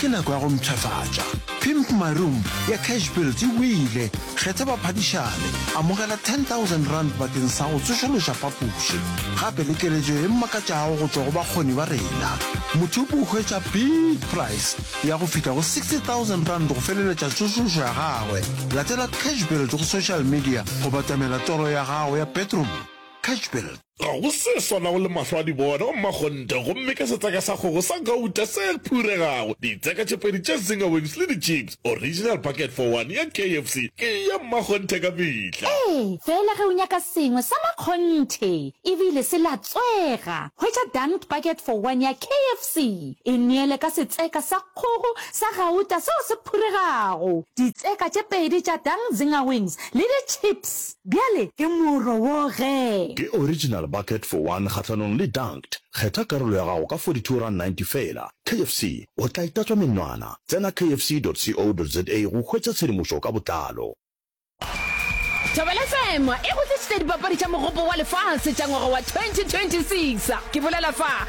Ke nako ya go mpshafatša. Pimp My Room ya Cash Build e wele. Kgetha baphadišani. Amogela R10,000 bakeng sa go tsošološa phapoši. Gape le keletšo e makatšago go tšwa go bakgoni ba rena. Motho o hwetša big price ya go fihla go R60,000 go feleletša tsošološo ya gagwe. Latela Cash Build go social media go batamela toro ya gago ya bedroom. Cash Build. Ga go se swanago le mahlo a dibona wa mmakgonthe gomme ke setseka sa kgogo sa gauta se phuregago, ditseka tše pedi tša zinger wings le di-chips. Original bucket for one ya KFC ke ya mmakgonthe ka mehla. Ee, fela ge o nyaka sengwe sa makgonthe e bile se latswega, hwetša dunked bucket for one ya KFC. E neele ka setseka sa kgogo sa gauta seo se phuregago, ditseka tše pedi tša dunked zinger wings le di-chips. Bjale ke moro wo ge. Ke original bucket for one kgahlanong le dunked. Kgetha karolo ya gago ka 42 rand 90 feela. KFC, o tla itatswa menwana. Tsena kfc dot co dot za go hwetša tshedimošo ka botlalo. Thobela FM e go tlišitša dipapadi tša Mogopo wa Lefase tša ngwaga wa 2026. Ke bolela fa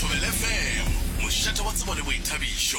Thobela FM, mošate wa tsebo le boithabišo.